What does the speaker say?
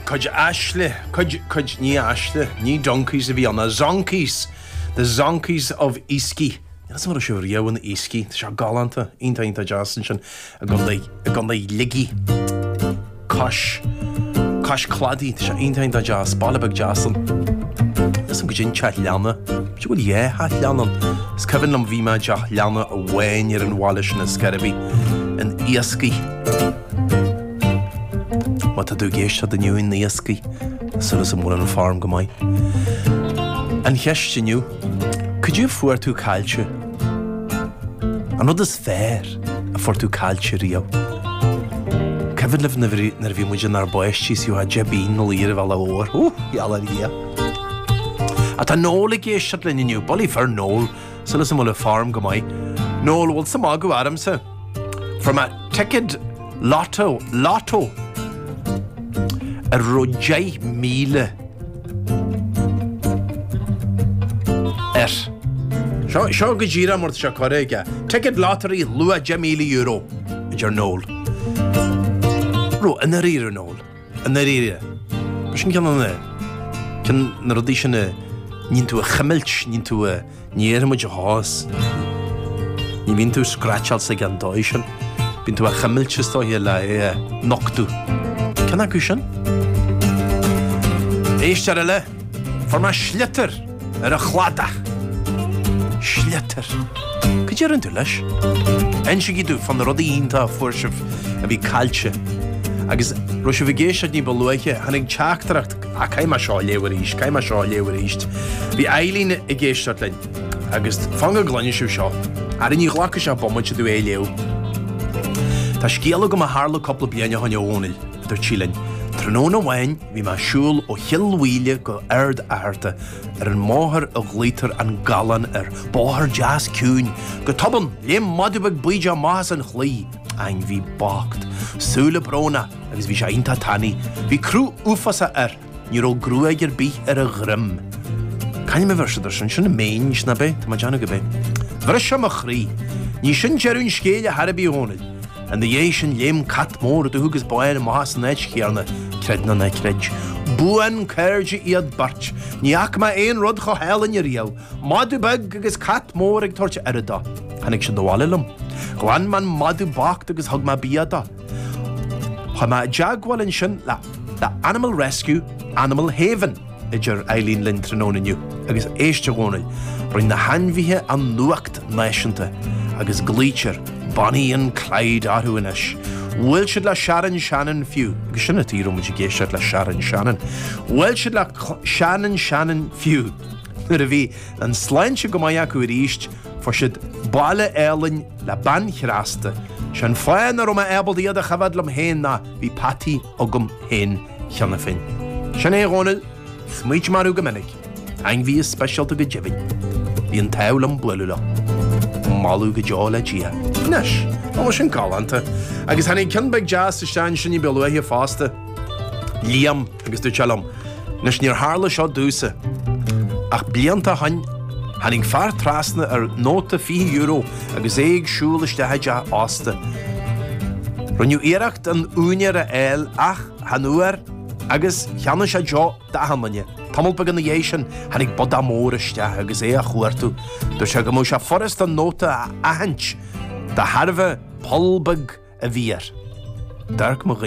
Cuid asail, cuid, cuid ní asail, ní donkeys a bhí ann, the zonkies! The zonkies of Easky. Níl 'fhios a'm an raibh sibh riamh in Easky, tá sé galánta, iontach, iontach deas ansin i gContae, i gContae Shligigh, cois, cois cladaigh, tá sé iontach, iontach deas, baile beag deas ann. Níl 'fhios a'm cad é an teach leanna, b'fhéidir go bhfuil dhá theach leanna ann. Is cuimhin liom bhí mé i dteach leanna amháin ar an bhaile sin i Skerriebee, in Easky. Má tá tú ag éisteacht inniu in Easky, súil 's go bhfuil an form go maith? An cheist inniu, Cad é a fuair tú caillte? An rud is fearr a fuair tú caillte riamh? Cuimhin libh nuair a bhí muid inár bpáistí is gheofá deich bpingine i lár an bhealaigh mhóir. Hú! Iall ar Dhia! Ach tá Noel ag éisteacht linn inniu. Bully for Noel! Súil 's go bhfuil an form go maith? Noel, bhfuil tusa ag magadh ormsa? Fuair mé ticket lotto, lotto, a raibh deich míle air. Seo, seo go díreach mar atá sé curtha aige. Ticket lottery, luach €10,000, a deir Noel. Raibh i ndáiríre, a Noel. I ndáiríre, b'shin ceann de na. ceann de na rudaí sin a níonn tú a chuimilt, níonn tú a. ní iarrfaidh muid a chás. Ní bhíonn tú scraitseáil sa gan dóigh sin. Bíonn tú a chuimilt is dóigh le é a nochtadh. Ceann acu sin? Éisteoir eile! Fuair mé sliotar ar an chladach. Sliotar. Cad é a rinne tú leis? Insígí domh fá na rudaí iontach a fuair sibh a bhí caillte agus raibh sibh ag éisteacht ní ba luaithe. Tháinig teachtaireacht, Ah, caithfidh mé seo a léamh arís, caithfidh mé seo a léamh arís. Bhí Eileen ag éisteacht linn agus fan go gcluine sibh seo, Ara, ní ghlacfaidh sé bomaite domh é a léamh. Tá scéal agam a tharla cúpla bliain ó shoin, a Dhónaill, a dúirt sí linn. Tráthnóna amháin, Bhí mé ag siúl ó Chill Mhaoile go Ard Fhearta ar an mbóthar a ghlaotar an Gallán air. Bóthar deas ciúin. Go tobann, léim madadh beag bídeach amach as an chlaí. Ainmhí bocht. Súile brónach agus bhí sé iontach tanaí. Bhí cruth uafásach air. Ní raibh gruaig ar bith ar a dhroim. C'ainm a bheir siad ar sin? Sin an Mange, nab é? Tá mé ag déanamh gurb é. Bhris sé mo chroí. Ní sin deireadh an scéil ar chor ar bith, a Dhónaill. Ina dhiaidh sin léim cat mór dubh agus bán amach as an áit chéanna, creid nó ná creid. Buan-chairde iad beirt. Ní fhaca mé aon rud chomh hálainn riamh. Madadh beag agus cat mór ag tabhairt aire dó. Tháinig siad abhaile liom. Ghlan mé an madadh bocht agus thug mé bia dó. Chuaigh mé i dteagmháil ansin le Animal Rescue, Animal Haven. idir Eileen linn tráthnóna inniu agus éist, a Dhónaill, rinne na hainmhithe an nuacht náisiúnta agus glaoitear Bonnie and Clyde orthu anois. Bhuail siad le Sharon Shannon fiú, agus sin an tuige a raibh muid ag éisteacht le Sharon Shannon. Bhuail siad le Sharon Shannon fiú. Nuair a bhí an sláinte go maith acu arís, fuair siad baile álainn le bean chneasta. Sé an fáth nach raibh mé ábalta iad a choimhead liom féin ná bhí Patty agam féin cheana féin. Sin é a Dhónaill, smaoitím orthu go minic, ainmhithe speisialta go deimhin. Bhí an t-ádh liom bualadh leo. Moladh go deo le Dia. Anois, tá sin galánta. Agus tháinig ceann beag deas isteach ansin ní ba luaithe fosta. Liam agus dúirt sé liom, Anois níor tharla seo domhsa. Ach blianta ó shin, tháinig fear trasna ar nóta €20, agus é ag siúl isteach i dteach ósta. Rinneadh iarracht an úinéir a fháil ach chan fhuair agus cheannaigh sé deoch d'achan duine. Tamall beag ina dhiaidh sin tháinig bodach mór isteach agus é á chuartú. Dúirt sé go mbeadh sé furast an nóta a aithint de thairbhe poll beag a bhí air. D'amharc mo dhuine